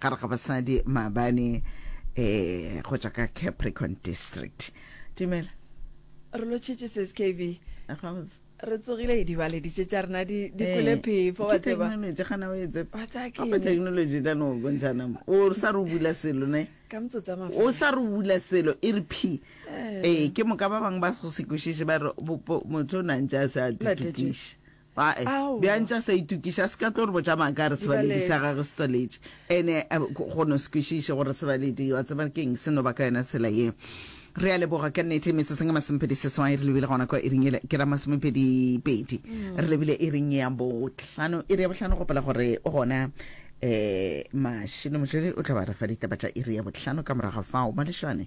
gare ga basadi maabane um go tšwa ka capricorn district tumela re lo tšhetše se skb re tsogile dibaleditše tša rena di eh, kole phefo wa technology gana o etse apa technology tla no bontšana mo o sa re bula selo ne ka motsotsa ma o sa re bula selo e re phi eh. eh ke moka ba bang ba go sekwešiše ba re motho o nantša a se a ditukiše Ae, bjang tša sa itukiša, a se ka tlo re botša maaka a re sebaledi sa gagwe se tswaletše, ene go no se kwešiše gore sebaledi wa tseba keng se no ba ka yona tsela ye. Re a leboga ka nnete. Metsotsong e masomepedi seswai re lebile gona kwa iring yela ke ra masomepedi pedi, re lebile iring ya bohlano, iri ya bohlano gopela gore o gona um Mashilo Mojeli o tla ba re fa ditaba tša iri ya bohlano ka morago ga fao. Malešwane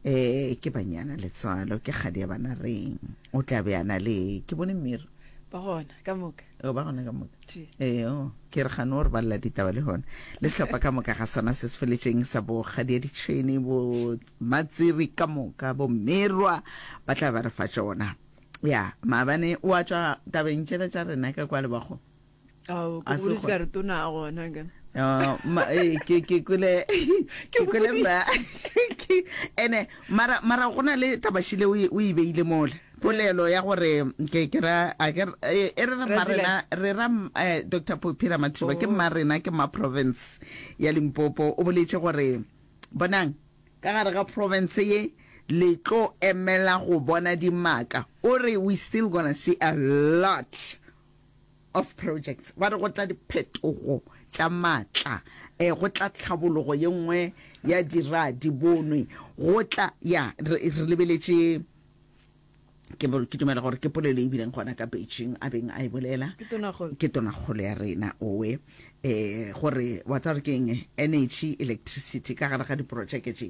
um ke Banyana Letswalo, ke kgadi ya Banareng, o tla be a na le ke bone Mir. ba gona ka moka o ba gona ka moka ee oh, ke re gane gore ba lela ditaba le gona le setlhopha ka moka ga sona se se feletseng sa bo gadia ditšhwene bo matsiri ka moka bo merwa ba tla ba re fa tsona ya maabane o a tswa tabeng tšela tša rena ka kwa lebago Ao, ke A se boletse kgona. ka re tona a gona ka. Oh, ma- eh, ke ke kwele ke kwele ma ke- ene mara mara go na le tabashi le o e- o e beile mole polelo ya gore ke ke ra a ke re- eh, e re re Ra marena re ra m- eh, dr popira mathiba ke Oh. marena ke ma province ya limpopo o boletše gore bonang ka gare ga province ye le tlo emela go bona dimaka o re we still gonna see a lot of Projects ba re go tla diphetogo tša maatla, eh, go tla tlhabologo ye nngwe ya dira di bonwe, go tla, ya, re, re lebeletše ke, ke dumela gore ke polelo e bileng gona ka Beijing a beng a e bolela ke tonakgolo ya rena owe eh gore wa tsa gore ke eng energy electricity ka gare ga diprojeke tše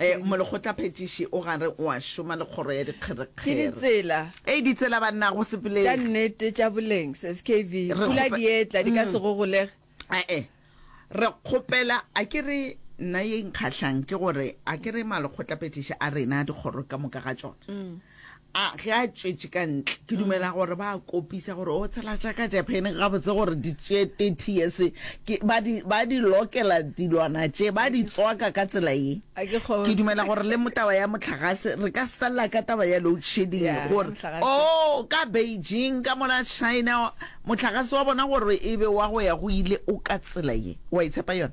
Ee, molekgotlaphethiši o gare o a šoma le kgoro ya dikgerekgere. Ee, ditsela banna go sepeleng. Tša nnete tša boleng, skv. Pula dietla di ka se gogolege. Ee, re kgopela a ke re nna ye nkgahlang ke gore a ke re malekgotlaphethiši a rena dikgoro ka moka ga tšona A ge a tšwetše ka ntle, ke dumela gore ba a kopisa gore o tshela tša ka Japaneng gabotse gore di tšee 30 years. Ke, ba di, ba di lokela dilwana tše, ba di tswaka ka tsela ye. A ke kgo- Ke dumela gore le mo taba ya mohlagase, re ka se felela ka taba ya load shedding Yeah, gore, mohlagase. oh, ka Beijing, ka mola China, mohlagase wa bona gore e be wa go ya go ile o ka tsela ye. Wa e tshepa yona?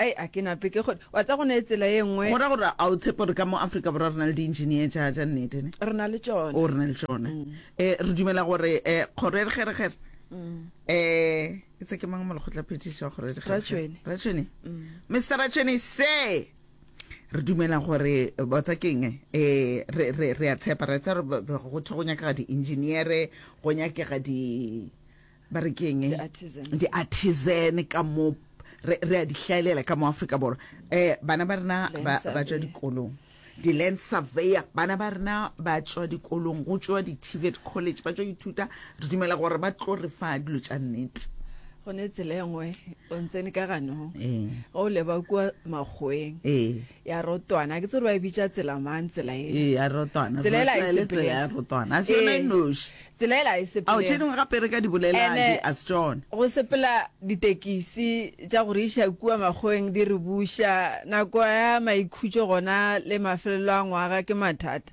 Ai, a ke nape ke kgone. Wa tsa go ne tsela e nngwe. Go ra gore a o tshepe gore ka mo Afrika Borwa re na le di-engineer tša tša nnete ne? Re na le tšona. O re na le tšona. Eh, re dumela gore eh kgoro e re kgere kgere. Eh, itse ke mang mo lekgotlaphethiši wa kgoro e re kgere kgere? Ratšhweni. Ratšhweni. Mr. Ratšhweni se re dumela gore botsa keng eh re re re a tshepa re tsa re go thwe go nyakega di-engineer go nyakega di ba re keng di-artisan ka mo re a di hlaelela ka mo afrika borwa um bana ba rena ba tswa dikolong di-land surveyor bana ba rena ba tswa dikolong go tswa di-tvet college ba tswa ithuta re dumela gore ba tlo re fa dilo tša nnete gone tsela e nngwe o ntsene ka ganong ee. o leba kua makgweng ee. ya rotwana ke tsere ba e bitša tsela mang tsela e ee ya rotwana tsela ela e sepele tsela ya rotwana a se yona e noši tsela ela e sepele ao tše dingwe gape re ka di bolela di a se tsone go sepela ditekisi tša go re iša kua makgoeng di re buša nako ya maikhutšo gona le mafelelo a ngwaga ke mathata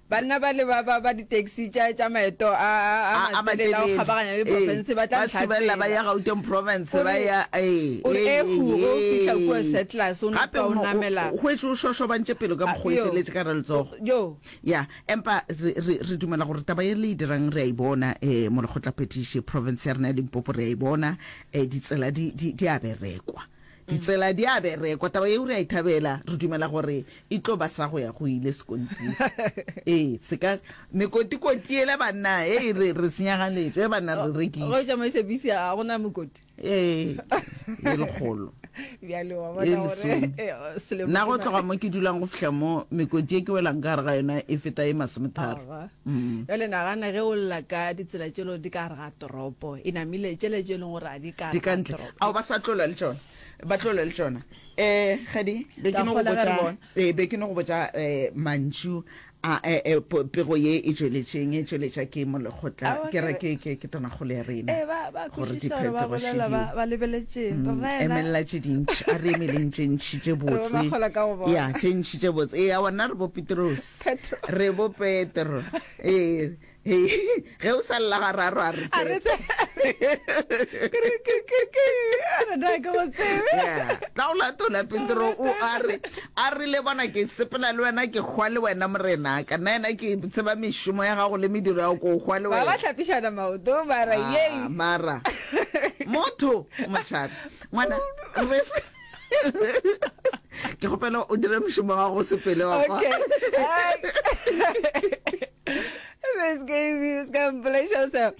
Banna bale ba ba ba ditaxi tša tša maeto a a a a a matelele a go matelele kgabaganya le ee profense ba tla ba ntlha subelela ba ya tsela. gauteng province O ba re- ya ee o re, ee, "Eh, hu, o ee, fihla kua ee." Settlers, o no gape tloga o mo- namela. o hwetše o šošobantše pelo ka mokgwa o e Yo, feletše ka re letsogo o- yo. ya empa re, re, re dumela gore taba ye le e dirang re a e bona um mo lekgotlaphethiši province ya rena ya limpopo re a e bona um ditsela di, di, di a berekwa Ditsela di a berekwa. Taba yeo re a e thabela. Re dumela gore e tlo ba sa go ya go ile sekontiri. Ee, se ka mekotikoti yela banna e e re re senyagaletšo e banna re rekile. Go tsamaisa bisi a go na mekoti. Ee, e lekgolo. Bjale wa bona gore eh, selemo. Nna go tloga mo ke dulang go fihla mo mekoti e ke welang ka gare ga yona e feta e masometharo. Jale nagana ge o lla ka ditsela tšelo di ka re ga toropo e namile, tšele tše e leng gore a di ka re ga toropo. Ao ba sa tlola le tšona, ba tlola le tšona. Um Kgadi, be ke no go botša, ee, be ke no go botša um mantšu a pego ye e tšweletšeng, e tšweletša ke mo lekgotla, ke re ke, ke, ke tonakgolo ya rena, gore diphetogoši di, emelela tše dintši, a re emeleng tše ntši tše botse, ya, tše ntši tše botse, ee, aowa, nna re bo Petrose. Petro. re bo petro ee ee, ge o sa lela ga raro a re A re tsebe. Ke- ke- ke- ke- a re na ke go tsebe. Yeah. tla o latola petro o a re a rile bona ke sepela le wena ke hwa le wena morena ka nna ena ke tseba mešomo ya gago le mediro ya go ko hwa le ba ba wena hlapišana maoto mara Ah, yei mara motho mošabi ngwana re fe- ke gopela o dire mošomo wa go sepele wa kwa This game is going to play yourself.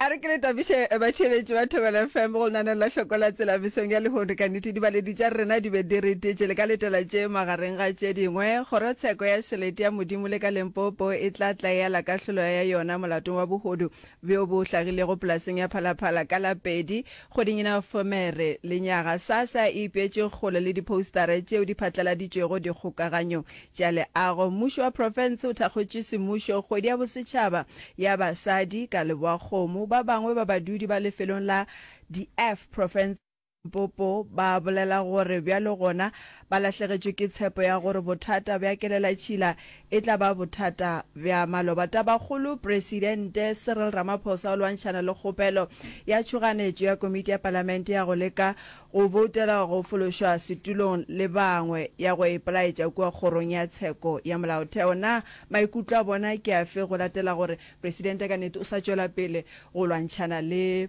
a re ke le tabiše eh, batšheletši ba thobela fm go lenaneng la hloko la tsela mesong ya lehono ka nnete dibaledi tša rena di be di re tetše le ka letela tše magareng ga tše dingwe kgorotsheko ya šelete ya modimo le ka lempopo e tla tlaela kahlolo ya yona molatong wa bohodu bjo bo hlagilego polaseng ya phalaphala ka la pedi Kgodinyana Fomere, Lenyaga, Sasa e ipeetše kgole le diphoustara tšeo di phatlaladitšwego dikgokaganyong tša leago. Mmušo wa profense o thakgotše semmušo kgwedi ya bosetšhaba ya basadi ka Leboakgomo. Ba bangwe ba badudi ba lefelong la Dieph, profense ya Limpopo, ba bolela gore bjalo gona Ba lahlegetšwe ke tshepo ya gore bothata bja kelelatšhila e tla ba bothata bja maloba. Tabakgolo, Presidente Cyril Ramaphosa o lwantšhana le kgopelo ya tšhoganetšo ya Komiti ya Palamente ya go leka go boutela go fološwa setulong le bangwe ya go ipelaetša kua Kgorong ya Tsheko ya Molaotheo. Na maikutlo a bona ke afe go latela gore Presidente ka nnete o sa tšwela pele go lwantšhana le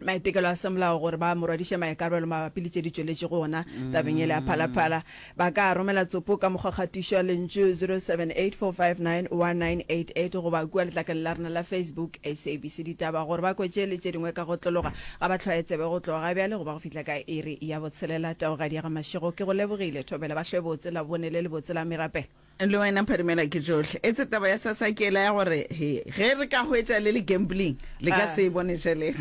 maitekelo a semolao gore ba morwadiše maikarabelo mabapi le tše di tšweletše go ona tabeng ele ya phalaphala ba ka romela tsopo ka mokgwa kgatišo ya lentšu 0784591988 goba kua letlakeng la rena la facebook sabc ditaba gore ba kwetše le tše dingwe ka go tlologa ga ba tlhwaye tsebe go tloga bjale goba go fihla ka iri ya botshelela taogadi ya ga mašego ke go lebogile thobela ba hlwebotse la bone le lebotse la merapelo Le wena Pharimela ke tšohle. Etse taba ya sasa ke yela ya gore he, ge re ka hwetša le le gambling, le ka Ah. se e bone tšhelete.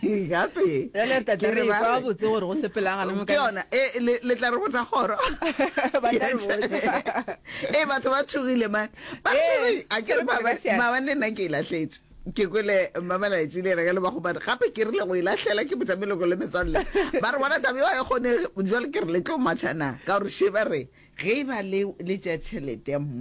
Eh. Gape. Bjale re tla tla Ke re re ba kwa re- botse gore go sepelanga le mo Ke ka- yona, eh, le le tla re botsa kgoro. Ba tla re botsa. Eh, batho ba tšhogile man. Ba re Eh, ke re, a ke re se re ba- ba- phagasiyana. maabane nna ke e lahletše. ke kwele mmamalaetši le ena ka lebagobane gape ke rile go e lahlela ke botša meloko le metswalle ba re bona tabe wa e kgonege jale ke re le tlo matšha na ka gore šeba re ge e ba le tša tšhelete ya mmu